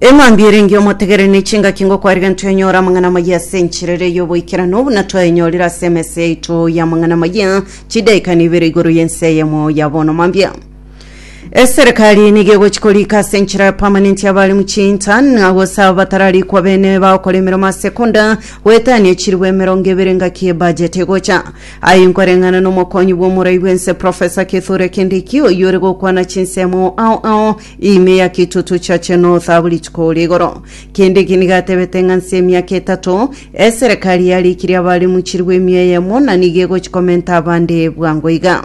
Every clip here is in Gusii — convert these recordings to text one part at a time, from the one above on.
eng'ambi erenge omotegere ne chingaki ngokwariga ntwenyora amang'ana amaya ase enchirere y'oboikerano buna twayenyorire ase emesa yaito y'amang'ana amaya chidaika nibere igoro y'ense eyemo ya bono mambia eserekari nigo egochi korika ase enchera ya permanent abari muchinta nagose abo batararikwa bene bagokora emeremo ase konda goetania chiribu emerongo ebere engaki ebudget egocha Aye nkoreng'ana nomokonyi bw'omorai bw'ense Professor Kithure Kindiki oyio ore gokwana chinsemo ao ao ime ya kitutu chiache North abo rituko ore igoro. Kindiki nigo atebete ng'a nse emiaka etato eserekari yarikirie abare mochirwe emia eyemo na nigo egochi komenta abande bwango iga.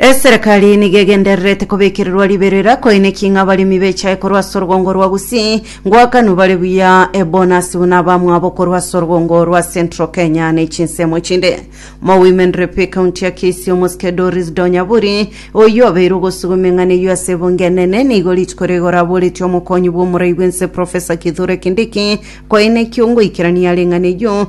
Eserekari nigo egendererete kobekererwa riberera koineki ng'a abaremi bechae korwa ase orwongo rwa Gusii ngwakanu bare buya ebonasi buna abamwabo korwa ase orwongo rwa Central Kenya na echinsemo chinde. Mo Women Rep ekaunti ya Kisii omosike Doris Donyaburi oyio obeire ogosugwa emeng'ana eyio ase ebunge enene nigo rituko riga oraboretie omokonyi bwa omorai bw'ense Professor Kithure Kindiki koineki ongoikerania are eng'ana eyio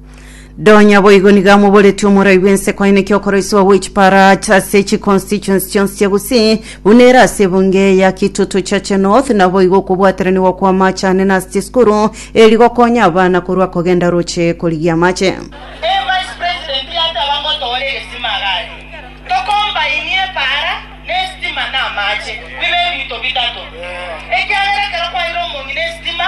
Donya boigo niga moboreti omorai bwense kwaine kiokoroiswa gwe chipara chase chi constituents chionsi chia Gusii buna ere ase ebunge ya Kitutu Chache North na boigo okobwateraniwa kwa amache ane na ase chisukuru eri gokonya abana korwa kogenda roche korigia amache. Ee Vice President yataba ngotoore egesima agati, Tokombainie epaara, na esitima, na amache, bibe ebinto bitato. Ekiagera ekero kwaire omong'ina esitima,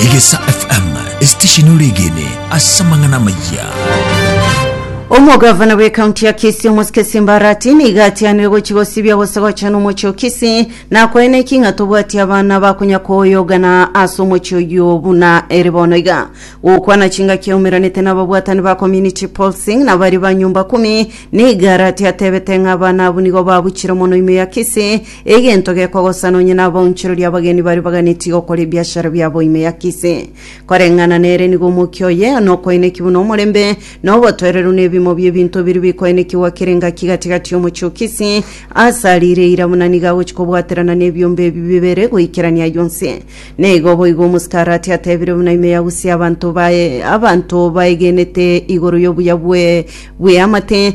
Egesa FM, esitesheni ore egene ase amang'ana amaya. Omogavana bw'ekaunti ya Kisii Omosike Simbarati nigo atianire gochi gosibia gose gochana omochie o Kisii nakoe neki ng'a tobwati abana bakonya koyogana ase omochie oyio buna ere bono iga gokwana chingaki yaumeranete n'ababwatani ba community pulsing na baria ba nyumba kumi nigo arati atebete ng'a abana abwo nigo babuchire mono ime ya Kisii Egento gekogosana onye nabaonchoreri abageni baria baganetie gokora ebiashara biabo ime ya Kisii. Koreng'ana nere nigo omokia oye nokoeneki buna omorembe na obotoereru nebimo biebinto biria bikoenekigwa kera engaki gati-gati y'omochie o Kisii ase arire eira buna nigo agochi kobwaterana nebiomba ebi bibere goikerania ayio onsi. Neigo boigo omosike Arati atebire buna ime ya Gusii abanto bae abanto baegenete igoro y'obuya bwe bw'eamate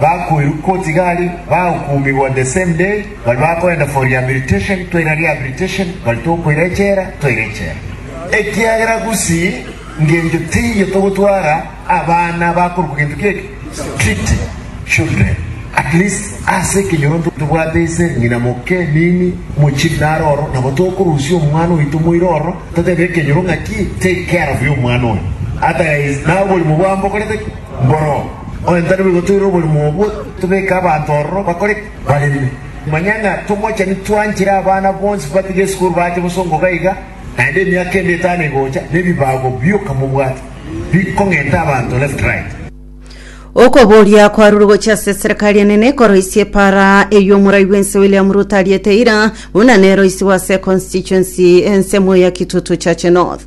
Bakoirwa koti iga aria bagokumigwa the same day, baria bakoenda for rehabilitation toira rehabilitation, baria tokoira echela toira echela. Ekiagera gusi ngencho teiyo togotwara abana bakorokwa gento kieke street children. At least ase ekenyoronto tobwate ise, ng'ina, moke, mimi, mochiri naro ororo, nabo tokorusia omwana oito moira ororo totebie ekenyoro ng'aki take care of y'omwana oyo, otherwise nawe oborimo bwabo bokorete ki? Mboro, Oyontari boigo toire oborimo obwo, tobeke abanto ororo bakore ki? Bareme. Manya ng'a tomochani twanchire abana bonsi batiga esukuru bache bosongoka iga, naende emiaka ende etano egocha, nebibago bioka mobwate, bikong'enta abanto left right. Okoboria kwarure gochia ase eserekari enene ekoroisia epaara eyio omorai bwense William Ruto ariete eira buna neroisiwe ase econstituency ensemo ya Kitutu Chache North.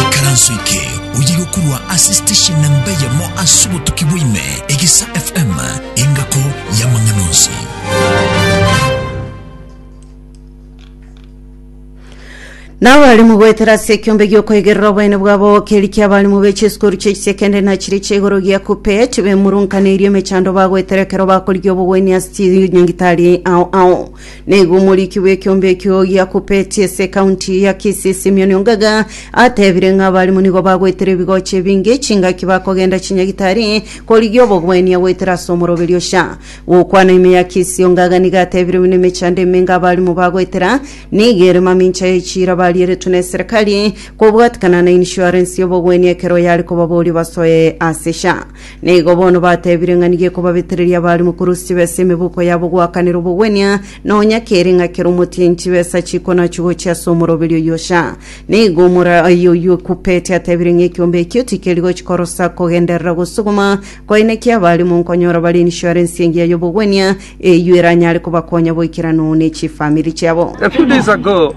Ikaranso eke oye gokorwa ase station namba eyemo ase obotuki bwaime, Egesa FM, engako y'amang'ana onsi. N'abalimu goetera ase ekiombe gi'okoigerera oboene bwabo keri ki'abalimu be chisukuru chie chisekendari na chiria chia igoro gia KUPPET bemurunkaneirie emechando bagoetera ekero bakorigia obogwenia ase chinyagitari ao ao Nigo omoriki bw'ekeombe ekio gia Kupeti ase ekaunti ya Kisii Simion Ongaga atebire ng'a abarimu nigo bagoetera ebigocha ebinge chingaki bakogenda chinyagitari korigia obogwenia goetera ase omoroberi o sha gokwana ime ya Kisii Ongaga nigo atebire buna emechando emenge abarimu bagoetera nigo ere mamincha ya echiira barieretwe ne serikali kobwatikana na insurance y'obogwenia ekero yare kobaboria basoe ase sha Na igo bono batebire ng'a nigo ekobabetereria abarimu korusia chibe ase emeboko yabo goakanera obogwenia, nonya kere ng'a kera omotienyi chibe ase achikwa nachio gochia ase omoroberio oyio sha. Na igo omoraia oyio o Kupeti atebire ng'a ekiombe ekio tikeri gochia korosa kogenderera gosuguma, koineki abarimu nkonyora bare insurance engiya y'obogwenia, eyio eranyare kobakonya boikeranu ne chifamiri chiabo. A few days ago,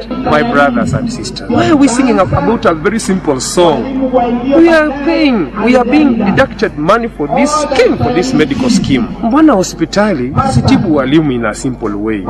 My brothers and sisters, why are we singing about a very simple song? We are paying, we are being deducted money for this scheme, for this medical scheme. Mbona hospitali sitibu walimu in a simple way.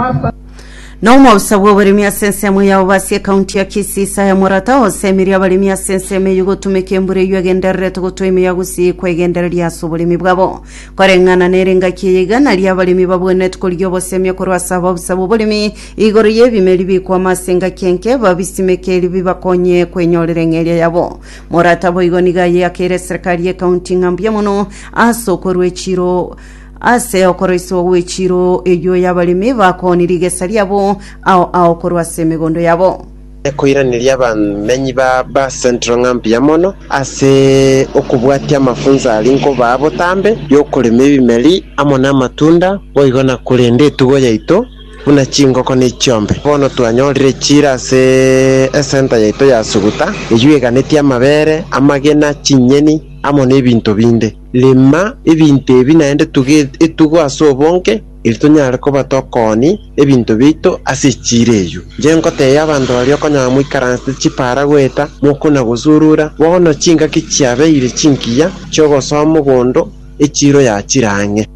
na omousa bw'oboremi ase ensemo yao basi ekaunti ya kisii isaya morata osemiri abaremi ase ensemo eyio gotumeka embura eyio egendererete gotwa ime ya gusii kwegendereria ase oboremi bwabo koreng'ana nere engaki eye igana ria abaremi babwenereti korigia obosemia korwa ase abausa b'oboremi Igoro y'ebimeri bikwama ase engaki enke, babisimeke erio bibakonye kwenyorera eng'eria yabo. Morata boigo nigo ayeakeire eserekari y'ekaunti ng'a mbuya mono ase okorwa echiro ase okoroisigwa gw'echiro eyio y'abaremi bakooni rigesa riabo ao ao korwa ase emegondo yabo. Ekoiraneria abamenyi ba Bass Central ng'a mbuya mono ase okobwatia amafunso aria nkobaa botambe y'okorema ebimeri amo namatunda boigo na korenda etugo yaito. buna chingoko ne chiombe. Bono twanyorire chiira ase esenta yaito ya Suguta, eyio eganetie amabere, amagena, chinyeni, amo nebinto binde. Rema ebinto ebi naende tuge etugo ase obonge, eri tonyare koba tokooni ebinto biaito ase echiira eyio. Inche ngoteebia abanto baria okonyora moikaranse chipaara goeta, mokuna gosurura, bono chingaki chiabeire chinkiya chi'ogosoma mogondo, echiiro yachire ang'e.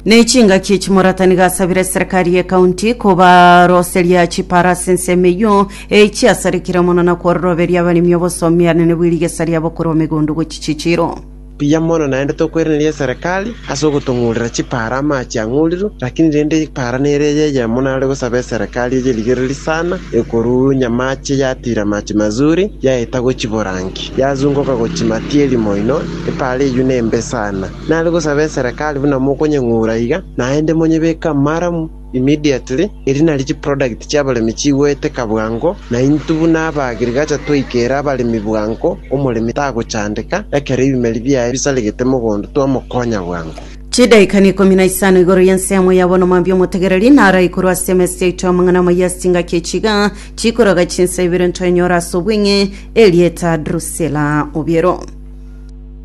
Ne chingaki echi Moratani gasabire serikali ye county kobaroseria chiparasi ense emeyio e chiasarekire mono na kworoberia abaremi obosomi are ne bw'erigesa riabo korwa omegondo gochi chichiro. Mbuya mono naende tokwereneria eserekari ase ogotong'urera chipaara amache ang'urirwe, lakini rende epaara nere eye eyemo nare gosaba eserekari eye erigereri sana ekoruu nyamache yatiira amache mazuri yaeta gochi borangi yazungoka gochi matieri moino epaara eyio nembe sana. Nare gosaba eserekari buna mokonyeng'ura iga, naende monyebeke amaramu immediately, erio nario chiproduct chiabaremi chigoeteka bwango, na intwe buna aba agriculture twaikera abaremi bwango, omoremi tagochandeka, ekero ebimeri biaye bisaregete mogondo twamokonya bwango. Chidaikaini ikomi na isano igoro y'ensemo ya bono mambia omotegereri naraikorwe ase emesi yaito y'amang'ana amaya ase engaki ya chiga chikoroga chinsa ibere ntoenyore ase obweng'e, erieta Drusilla Obiero.